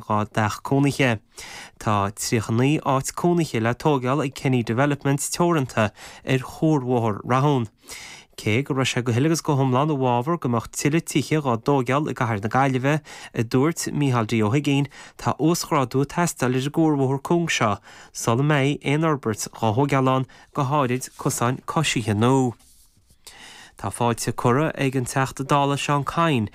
dhá dteach cónaithe. Tá 39 áit cónaithe le tógáil ag Kenny Developments Teoranta ar chuarbhóthar Rathún. Cé go raibh sé go huile agus go hiomlán i bhfabhar go mbeadh tuilleadh tithe dhá dtógáil i gCathair na Gaillimhe, a dúirt Micheál D Ó hUiginn, tá uasghrádú ag teastáil ar an gcuarbhóthar cúng seo sula mbeidh aon fhorbairt dhá thógáil ann, go háirid cosáin coisithe nua. Tá fáilte curtha ag an Teachta Dála Seán Kyne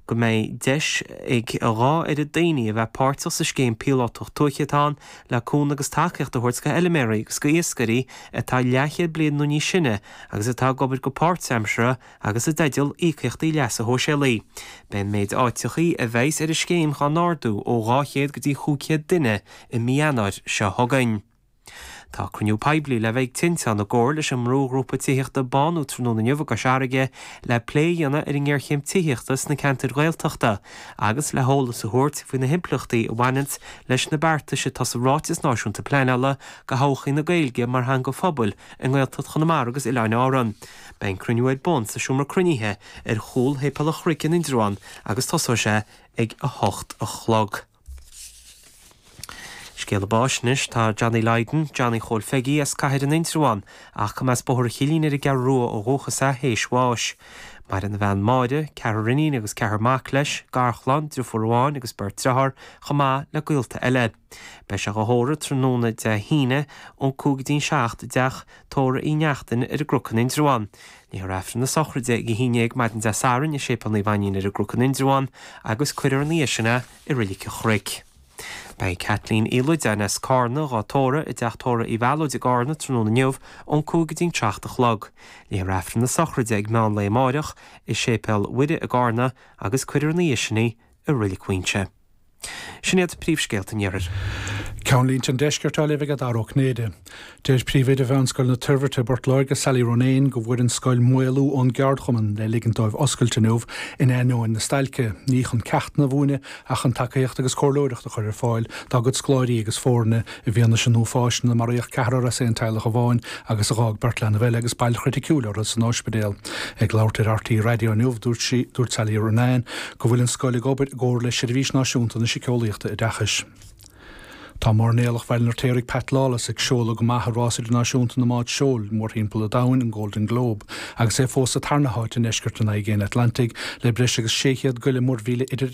go mbeidh deis ag a dhá oiread daoine a bheith páirteach sa scéim píolótach tuaithe atá ann le cúnamh agus tacaíocht a thabhairt go fheiliméaraí agus go iascairí atá leathchéad bliain nó níos sine agus atá ag obair go páirtaimseartha agus i dteideal íocaíochtaí leasa shóisialaigh. Beidh an méid áiteachaí a bheidhs ar an scéim dhá n-ardú ó 200 go dtí chúig chéad duine i mí Eanáir seo chugainn. Tá cruinniú poiblí le bheith ag Tinteán i gcomhar leis an mbrúghrúpa tithíochta Bánú tráthnóna inniu i gCois Fharraige le plé a dhéanamh ar an ngéarchéim tithíochta sna ceantair Ghaeltachta agus le heolas a thabhairt faoi na himpleachtaí a bhaineanns leis na beartais atá sa Ráiteas Náisiúnta Pleanála do thodhchaí na Gaeilge mar theanga phobail i nGaeltacht Chonamara agus Oileáin Árann. Beidh an cruinniú ar bun sa seomra cruinnithe ar chúl Shéipéal an Chnoic in Indreabhán agus tosóidh sé ag a hocht a chlog. Scéala báis anois. Tá Johnny Lydon, Johnny Chóil Pheigí, as Cathair in Indreabhán, ach go mba as Bóthar an Chillín ar an gCeathrú Rua ó dhúchas é, théis bháis. Maireann a bhean Máire, ceathrar iníon agus ceathrar mac leis, garchlann, driofúr amháin agus beirt driotháir, chomh maith le gaolta eile. Beidh sé dhá thórramh tráthnóna Dé hAoine, ón cúig go dtí'n seacht, i dteach tórraimh Uí Neachtain ar an gCnoc in Indreabhán. Léifear aifreann na sochraide ag a haon déag maidin Dé Sathairn i Séipéal Naomh Ainnín ar an gCnoc in Indreabhán agus cuirfear ina dhiaidh sin é i Reilig an Chnoic. Beidh Kathleen Uí Loideáin as Cárna dhá tórramh i dTeach Tórraimh Uí Mhealóid i gCárna tráthnóna inniu ón cúig go dtí'n seacht a chlog. Léifear aifreann na sochraide ag meán lae amáireach i Séipéal Mhuire i gCárna agus cuirfear ina dhiaidh sin í i Reilig Mhaínse. Sin iad príomhscéalta an iarthair. Ceannlínte an deiscirt á léamh ag Dara Ó Cinnéide. Deir Príomhoide Mheánscoil na Toirbhirte i bPort Láirge Sally Ronayne go bhfuair an scoil maolú ón gceardchumann le ligint dóibh oscailt inniu in ainneoin na stailce, ní chun ceachtanna a mhúineadh ach chun tacaíocht agus comhairleoireacht a chur ar fáil dá gcuid scoláirí agus foirne I bhfianaise an uafáis inar maraíodh ceathrar as aon teaghlach amháin agus a dh'fhág beirt leanbh eile agus bail chriticiúil orthu san óispidéal. Ag labhairt ar RTÉ Raidió inniu, dúirt sí, dúirt Sally Ronayne, go bhfuil an scoil ag obair i gcomhar le Seirbhís Náisiúnta na Siceolaíochta Oideachais. Tá Mairnéalach Bhaile an Fheirtéaraigh Pat Lawless ag seoladh go maith i Rás Idirnáisiúnta na mBád Seoil mórthimpeall an domhain, an Golden Globe, agus é fós sa tarna háit i ndeisceart an Aigéin Atlantaigh le breis agus 600 go leith muirmhíle idir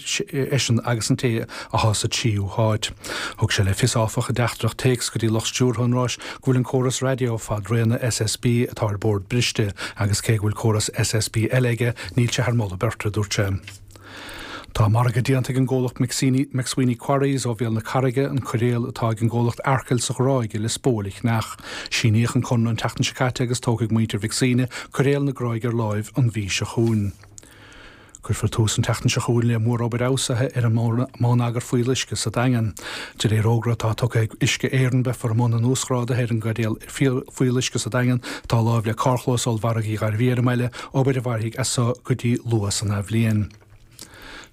eisean agus an té athá sa tríú háit. Thug sé le fios, áfach, i dteachtaireacht téacs go dtí lucht stiúrtha an ráis go bhfuil an córas raidió fad réanna SSB atá ar bord briste agus cé go bhfuil córas SSB eile aige níl sé thar mholadh beirte, a dúirt sé. Tá margadh déanta ag an gcomhlacht McSweeney Quarries ó Bhéal na Carraige an coiréal atá ag an gcomhlacht Arkell sa Ghráig i Lios Póil a cheannach. Síníodh an conradh an tseachtain seo caite agus tógfaidh muintir Mhic Suibhne coiréal na Gráige ar láimh an mhí seo chugainn. Cuirfear tús an tseachtain seo chugainn le mórobair fheabhsúcháin ar an mbonneagar fuíolluisce sa Daingean. De réir fhógra atá tugtha ag Uisce Éireann beifear i mbun an uasghrádaithe ar an gcaidéal fuíolluisce sa Daingean atá láimh le carrchlós ollmhargaidh Uí Ghairbhí ar an mbaile, obair a mhairfidh as so go dtí luath san athbhliain.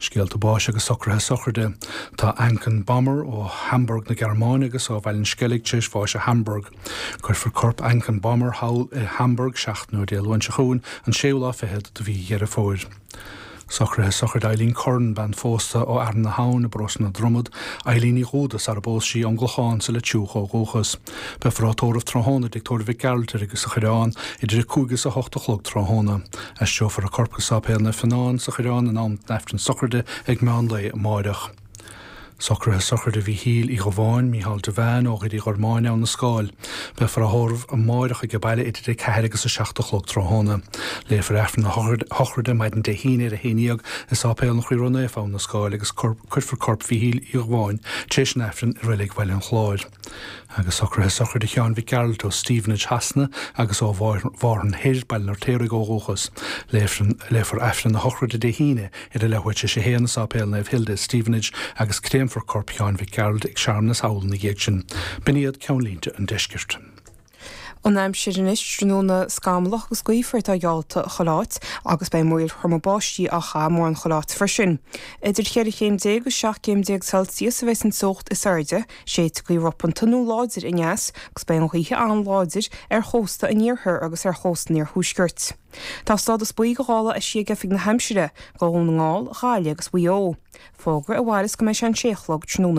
Scéalta báis agus socruithe sochraide. Tá Anken Bommer, ó Hamburg na Gearmáine agus ó Bhaile an Sceilg, tar éis bháis i Hamburg. Cuirfear corp Anken Bommer thall i Hamburg seachtain ón Dé Luain seo chugainn, an séú lá fichead de mhí Dheireadh Fómhair. Socruithe sochraide Eileen Curran, bean phósta ó Fhearann na hAbhann i bParóiste na Dromad, Eileen Ní Dhúda, sara phós sí ón gClochán sa Leitriúch ó dhúchas. Beifear á tórramh tráthnóna i dtigh tórraimh Mhic Gearailt sa Choireán idir a cúig is a hocht a chlog tráthnóna. Aistreofar a corp go Sáipéal Naomh Fionán sa Choireán in am d'Aifreann sochraide ag meán lae amáireach. Socruithe sochraide Mhíchíl Uí Dhubháin, Mícheál Devane, ó Dhoire Uí Ghormáin, Abha na Scáil. Beifear á thórramh amáireach aige baile idir 4 agus 7 a chlog tráthóna. Léifear Aifreann na sochraide maidin Dé hAoine ar 11 i Sáipéal an Chroí Ró-Naofa, Abha na Scáil agus cuirfear corp Mhíchíl Uí Dhubháin tar éis an Aifrinn i Reilig Bhaile an Chláir. Agus socruithe sochraide Sheáin Mhic Gearailt ó Stevenage Shasana agus ó Mhárthain Thoir, Baile an Fheirtéaraigh ó dhúchas, léifear Aifreann a shochraide Dé hAoine ar a leathuair tar éis a haon i Sáipéal Naomh Hilda i Stevenage agus créamfar corp Sheáin Mhic Gearailt ag searmanas abhlainne ina dhiaidh sin. B'in iad ceannlínte an Deiscirt. An aimsir anois, tráthnóna scamallach agus gaofar atá geallta chuile áit agus beidh múraíl throma báistí á gcaitheamh mórán chuile áit freisin. Idir cheithre chéim déag agus seacht gcéim déag Celsius a bheidh an teocht is airde. Séidfidh gaoth ropanta nó láidir aneas agus beidh an ghaoth an-láidir ar chósta an iarthair agus ar chósta an iarthuaiscirt. Tá stádas buí do ghála eisithe ag Oifig na hAimsire do Dhún na nGall, Ghaillimh agus Mhaigh Eo. Fógra a mhaireas go mbeidh sé an sé a chlog tráthnóna.